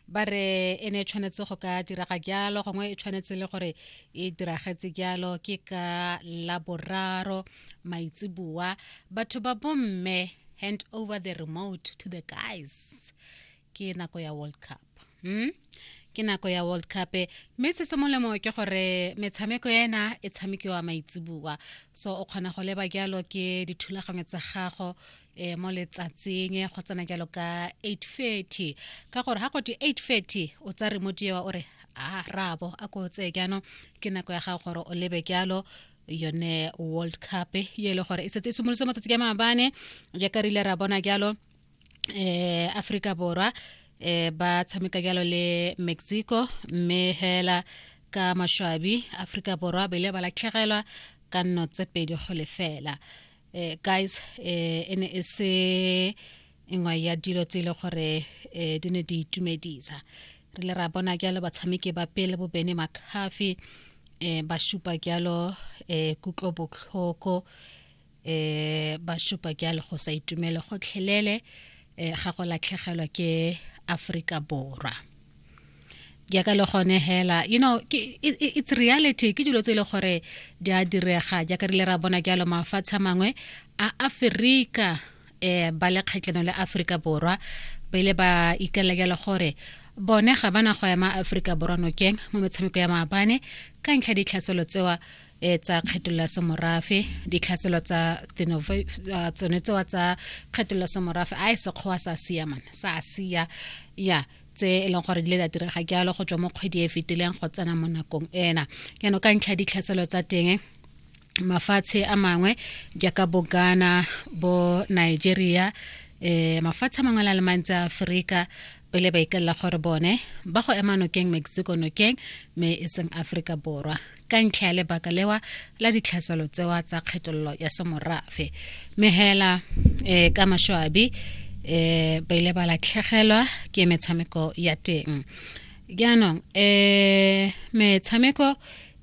ba re e ne e tshwanetse go ka diraga jalo gongwe e tshwanetse le gore e diragetse jalo ke ka laboraro maitseboa batho ba bomme hand over the remote to the guys ke nako ya world cup hmm? ke nako ya world cup mme se se molemo ke gore metshameko ena e tshamekiwa maitseboa so o kgona go leba jalo ke dithulaganyo tsa gago e mo letsatsing go tsena jalo ka 830 ka gore ga go twe 830 o tsa remote ewa o re a rabo a ko tseye jaanong ke nako ya gago gore o lebe jalo yone world cup ye e le gore e setse e simolotse matsatsi ka maabane jaaka re ile ra bona jalo eh Africa borwa eh ba tshameka jalo le Mexico mme hela ka mashwabi Africa borwa ba ile ba latlhegelwa ka nno tse pedi go lefela eh, guys eh, e ne e se nngwe ya dilo tse e le gore eh, di ne di itumedisa re le ra bona jalo batshameki ba pele bobene makafi eh, ba supa jalo eh, kutlo botlhoko eh, ba supa jalo go sa itumele gotlhelele eh, ga go latlhegelwa ke aforika borwa jaaka le gone hela you know ke, it, it's reality ke dilo tse e le gore di a direga jaaka re ile ra bona jalo mafatshe a mangwe a aferika eh ba le kgatlhanong le aforika borwa ba ile ba ikalela jalo gore bone ga bana go ema aforika borwa nokeng mo metshameko ya maabane ka ntlha ditlhaselo tsewa e tsa kgetolola semorafe ditlhaselo tsa ah, tsone tsewa tsa kgetolola semorafe a e sekgowa sa siamana sa sia ya tse e leng gore di le da direga jalo go tswa mo kgwedi e fetileng go tsena mo nakong ena yano ka ntlha ditlhatselo tsa teng mafatshe a mangwe jaaka bo ghana bo nigeria um mafatshe a mangwe la le mantsi a aforika pele ba ikalela gore bone ba go ema nokeng mexico nokeng me e seng aforika borwa ka ntlha ya lebaka lewa la ditlhaselo tsewa tsa kgetololo ya semorafe mme hela um eh, ka mashoabi um ba ile ba latlhegelwa ke metshameko ya teng jaanong um metshameko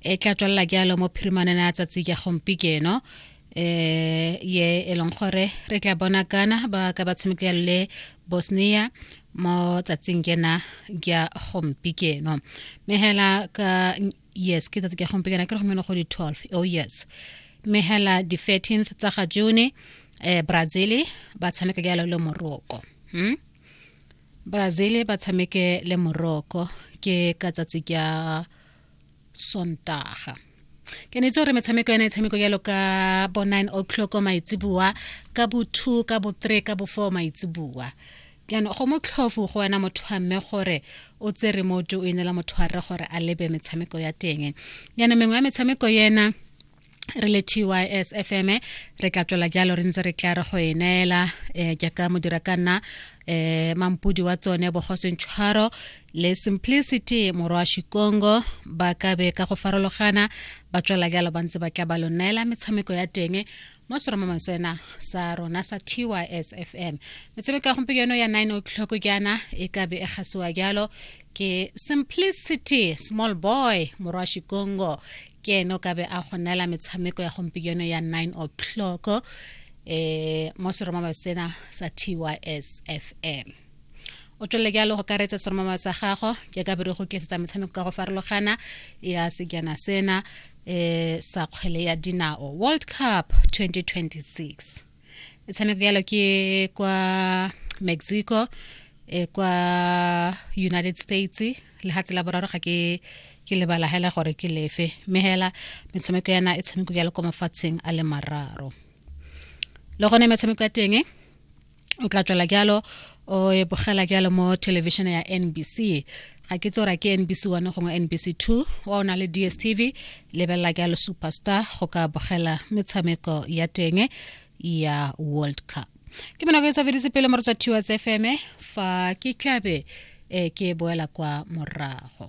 e tla tswelela jalo mo phirimaneng ya tsatsi ya gompi keno um ye e leng gore re tla bona kana ba ka ba tshamekela le bosnia mo tsatsing kena ya gompi keno mme hela ka yes ke tsatsi ke gompiekana ke re gomeno go di 12 oh yes mme hela di 13th tsa ga june eh brazil ba tshameka ke le moroko hmm? brazil ba tshameke le moroko ke ka tsatsi ke sontaga ke ne itse gore metshameko yana e tshameko jalo ka bo nine o'clock maitseboa ka bo two ka bo three ka bo four maitseboa Jaanong go motlhofu go wena motho wa mme gore o tse remote o inela motho wa rre gore a lebe metshameko ya teng jaanong mengwe ya metshameko ena re le tys fm re tla tswela jalo re ntse re tla re go e neela um jaaka modira ka nna um mampudi wa tsone bogosentshwaro le simplicity morwa shikongo ba ka be ka go farologana ba tswela jalo ba ntse ba tla ba lo neela metshameko ya teng mo seromamang sena sa rona sa tysfm metshameko ya gompieno ya 9 o'clock jaana e ka be e gasiwa jalo ke simplicity small boy morwa shikongo ke ene o ka be a go neela metshameko ya gompieno ya 9 o'clock um mo seromamang sena sa tysfm o tswelele jalo go karetsa seromama sa gago jaaka bere go tlisetsa metshameko ka go farologana ya sejana sena eh sa kgwele ya dinao world cup 2026 e tshameko yalo ke kwa mexico e kwa united states lehatshe la boraro ga ke ke lebala hela gore ke lefe mme hela metshameko yana e tshameko yalo kwa mafatsheng a le mararo le gone metshameko ya teng o tla tswela jalo o e bogela jalo mo television ya nbc ga ke tsora ke nbc one gongwe nbc two wa o na le dstv lebelela jalo superstar go ka bogela metshameko ya teng ya world cup ke monako e sa fedise pele mo re tswa tiwa tse feme fa ke tlabe um ke boela kwa morago